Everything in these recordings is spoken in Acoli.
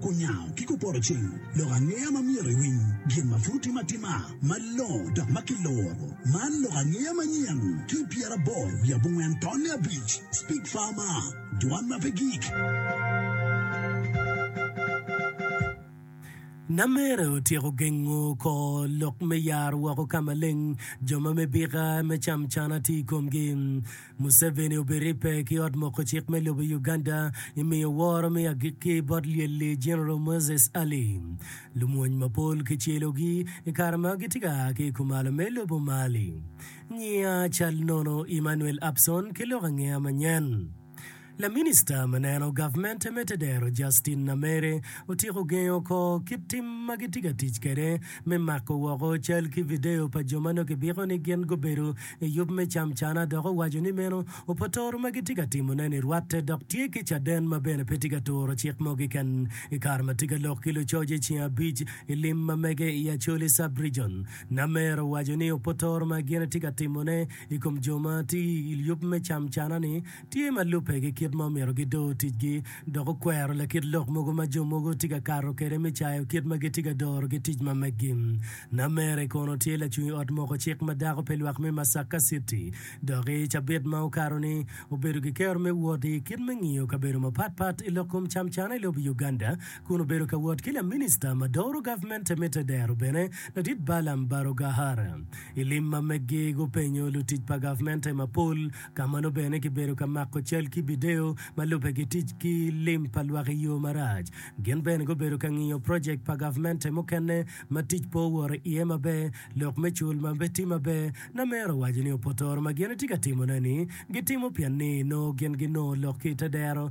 Kunyango ki kupoto cing lok angeya ma myero iwiny gin ma pud otime atima malongo dok ma kiloro. Man lok angeya manyen ki i pyeraboro wiye abongwen tonne abic. Speak Farmer, Dwan ma pe gik. Namere otyeko gengo kor lok me yaro woko ka maleng jo ma me bika me cam cana tye i komgi. Museveni obiribbe ki ot moko cik me lobo Uganda i miyo woro me agikki bot lyelli General Moses Ali. Lumwony mapol kicelogi i kare ma gitye ka a ki i kumalo me lobo Mali. Nyiya cal nono Emmanuel Abson ki lok angeya manyen. Laminista ma neno gavmente me tedero Justin Nameere otyeko gengo oko kit tim ma gitye ka tic kwede me mako woko cal ki video pa jo ma nongo kibiko ni gin gubedo i yub me camcana dok owaco ni meno opotoro ma gitye ka timone-ni rwatte dok tye ki caden ma bene pe tye ka turo cik mo keken i kare ma tye ka lok ki lucoc i ceng abic i lim ma mege i Acholi Sub-Region. Nameere owaco ni opotoro ma gin tye ka timone i kom jo ma tye i yub me camcana-ni tye ma lubbe ki kit ma omyero gidor ticgi, dok okwero lakit lok mogo ma jo mogo tye ka kato kwede me cayo kit ma gitye ka dorogi tic ma meggi. Namere kono tye lacungi ot moko cik ma dako pi lwak me Masaka Citi, dok i cabit ma okato-ni, obedo ki kero me wot i kit me ngiyo kabedo mapat pat i lok kom camcana i lobo Uganda, kun obedo ka wot ki laminista ma doro gavment Temita Dero bene ladit Balaam Barugahara. I lim ma meggi, gupenyo lutic pa gavmente mapol Kamano bene kibedo ka mako cal ki bideyo ma lubbe ki tic ki lim pa lwak i yo marac. Gin bene gubedo ka ngiyo projek pa gavmente mukene ma tic pe owoto iye maber, lok me cul ma pe tye maber. Namer owaco ni opotoro ma gin etye ka timone-ni gitimo pien ni nongo gin ginongo lok ki i te dero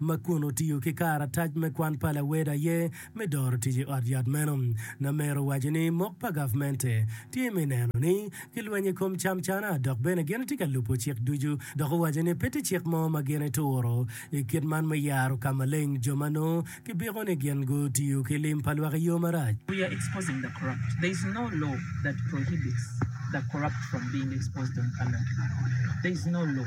ma kun otiyo ki karatac me kwan pa lawedo aye me doro tic i ot yat meno. Namer owaco ni mok pa gavmente tye me neno ni kilwenyo i kom camcana dok bene gin tye ka lubo cik ducu dok owaco ni pe tye cik mo ma gin ituro i kit man me yaro ka maleng jo ma nongo kibiko ni gin gutiyo ki lim pa lwak i yo marac. We are exposing the corrupt. There is no law that prohibits the corrupt from being exposed on camera. There is no law.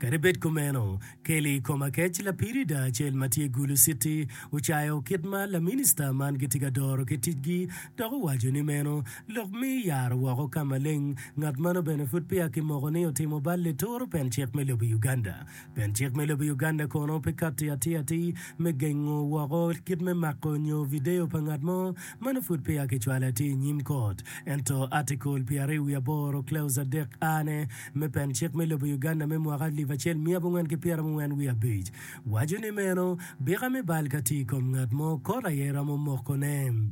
Kadi bed kumeno, Kelly Komakech, lapid i daa acel ma tye Gulu Citi, ocayo kit ma laminista man gitye ka doro ki ticgi dok owaco ni meno lok me yaro woko ka maleng ngat mano bene pud peya kimoko ni otimo bal lituru pen cik me lobo Uganda. Pien cik me lobo Uganda kono pe katti atir atir me gengo woko kit me mako nyo video pa ngat mo, meno pud peya kicwalo atir i nyim kot. Ento Article pyeraryo wiye aboro, Clause adek A ne, me pen cik me lobo Uganda me mwaka alip acel miya abongwen ki pyera mungwen wiye abic waco ni meno bika me bal ka tye i kom ngat mo kot aye romo mokone.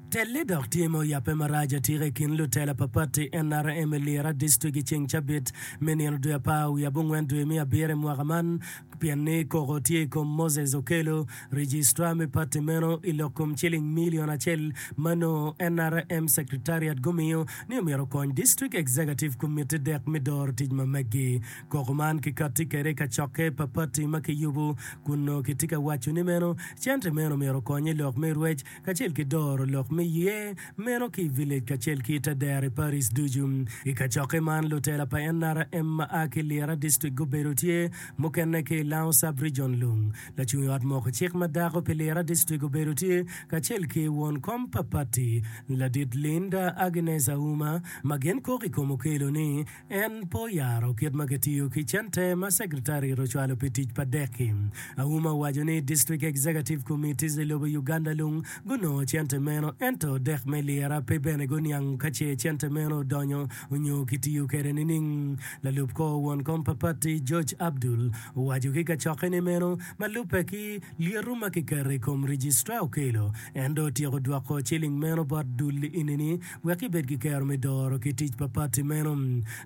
Telle dok tye ma oyabbe marac atika i kin lutela pa pati nrm i Lira dictrict i ceng cabit me nino dwe apar wiye abongwen dwe me abiro i mwaka man pien ni koko tye i kom Moses Okello, registrar me pati meno i lok kom ciling million acel ma nongo nrm secretariat gumiyo ni omyero okony dictrict executive committee dek me doro tic ma meggi. Koko man kikatti kwede i kacokke papatti ma kiyubo kun nongo kitye ka waco ni meno cente meno myero okony i lok me rwec kacel ki doro lok me ye meno ki i village kacel ki i te dero i Paris ducu. I kacokke man, lutela pa NRM ma a ki Lira District gubedo tye, mukene ki i Lango Sub-Region Lung. Lacung i ot moko cik ma dako pi Lira District obedo tye kacel ki won kom pa patti, Ladit Linda Agnes Auma, ma gin kok i kom Okello ni, En pe oyaro kit ma kitiyo ki cente ma Secretariat ocwalo pi tic pa dek-ki. Auma owaco ni District Executive Committees i lobo Uganda lung gunongo cente meno ento dek me lyera pe bene guniang ka ce cente meno odonyo onyo kitiyo kede nining. Lalub kor won kom pa pati George Abdul owaco ki kacokke ni meno ma lubbe ki lyeto ma kiketo i kom Registrar okelo en dong otyeko dwoko ciling meno bot dul i nini Wek ibed ki kero me doro ki tic pa pati meno,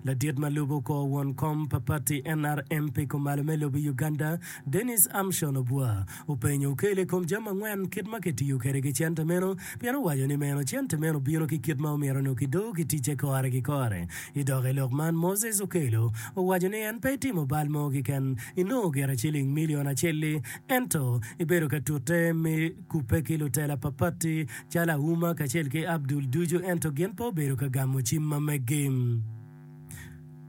ladit ma lubo kor won kom pa pati NRM pi kumalo me lobo i Uganda, Denis Amshon Obua, openyo Okello i kom jami angwen kit ma kitiyo kwede ki cente meno pien owaco ni meno cente meno bino ki kit ma omyero nongo kidor ki ticce kore ki kore. I dok i lok man, Moses Okello owaco ni en pe etimo bal mo keken i nongo gire ciling milion acel-li ento ebedo ka tute me kubbe ki lutela papatti calo Auma kacel ki Abdul ducu ento gin pe obedo ka gamo cim ma meggi.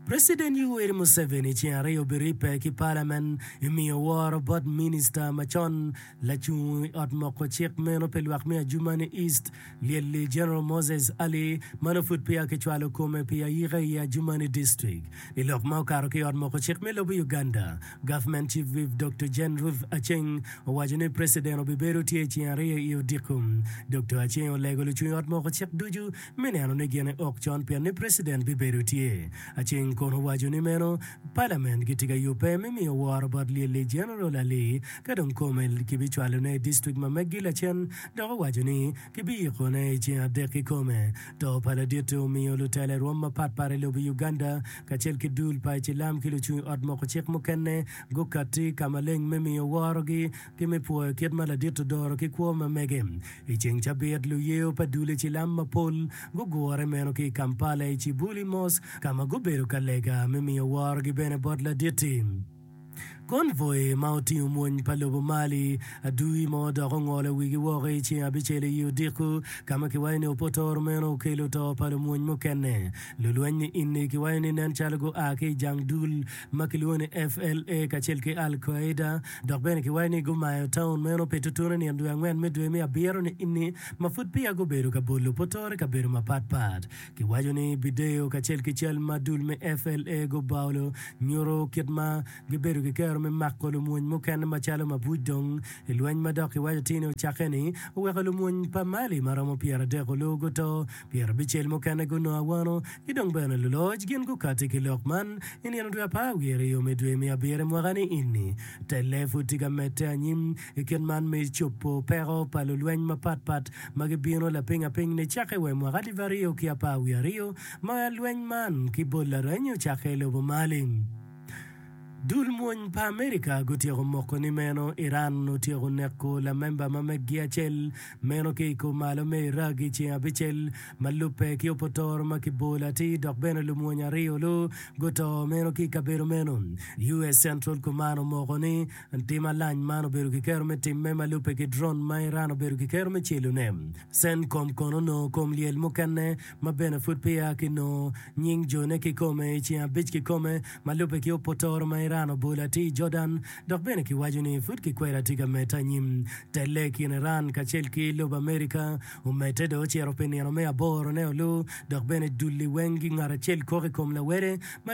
President Yoweri Museveni ceng aryo biribbe ki Parliament i miyo woro bot Minister macon lacung i ot moko cik meno pi lwak me Adjumani East Lyelli General Moses Ali ma nongo pud peya kicwalo kome pi ayika i Adjumani District. I lok ma okato ki i ot moko cik me lobo Uganda, Government Chief Whip Doctor Jane Ruth Aceng owaco ni President obibedo tye i ceng aryo i odiko. Doctor Aceng olego lucung ot moko cik ducu me neno ni gine ok con pienni President bibedo tye Aceng kun owaco ni meno palament gitye ka yubbe me miyo woro bot Lyelli General Ali ka dong kome kibicwalone i district ma meggi lacen dok owaco ni kibiyikone i ceng adek kikome. To pa laditte omiyo lutela i rwom mapat pat i lobo Uganda kacel ki dul pa icilam ki lucung ot moko cik mukene gukatti ka maleng me miyo worogi ki me pwoyo kit ma ladit odoro ki kwo ma mege. I ceng cabit, luyeyo pa dule cilam mapol gugure meno ki i Kampala i Kibuli Mosque ka ma gubedo ka lega me miyo worogi bene bot ladit-ti. Convoy ma otingo mwony pa lobo Mali adui mo dok ongolo wigi woko i ceng abicel i odiko ka ma kiwaco ni opotoro meno okelo to pa lumwony mukene. Lulweny-ni inni kiwaco ni nen calo gua ki i jang dul ma kilwongo ni FLA kacel ki Al Qaeda, dok bene kiwaco ni gumayo taun meno pi tutunu i nino dwe angwen me dwe me abiro ni-ni, ma pud peya gubedo ka bolo potoro i kabedo mapat pat. Kiwaco ni bideyo kacel ki cal ma dul me FLA gubaolo nyuto kit ma gibedo ki kero me mako lumwony mukene macalo mabuc dong i lweny ma dok kiwaco tini ocakke-ni oweko lumwony pa Mali ma romo pyeradek olu guto Pien abicel mukene gunongo awano, ki dong bene luloc gin gukatti ki lok man. I nino dwe apar wiye aryo me dwe me abiro i mwaka-ni ini, telle pud tye ka medde anyim. I kit man me cobo peko pa lulweny mapat pat ma gibino lapiny apiny nicakke wa i mwaka alip aryo ki apar wiye aryo, ma lweny man ki bot lareny ocakke i lobo mali. Dul mwony pa Amerika gutyeko moko ni meno Iran otyeko neko lamemba ma meggi acel meno ki i kom malo me Iraq i ceng abicel ma lubbe ki opotoro ma ki bolo atir dok bene lumwony aryo lu guto meno ki i kabedo meno. US Central Command omoko ni tim alac man obedo ki kero me timme ma lubbe ki drone ma Iran obedo ki kero me celo ne. Centcom kono onongo kom lyel mukene ma bene pud peya ki nongo nying jo ne ki kome i ceng abic ki kome Ma lubbe ki opotoro ma Iran obolo atir Jordan dok bene kiwaco ni pud kikweri atye ka medde anyim. Telle i kin Iran kacel ki lobo Amerika omedde dong ocito pi nino me aboro ne olu dok bene dul-li weng ngat acel kok i kom lawede ma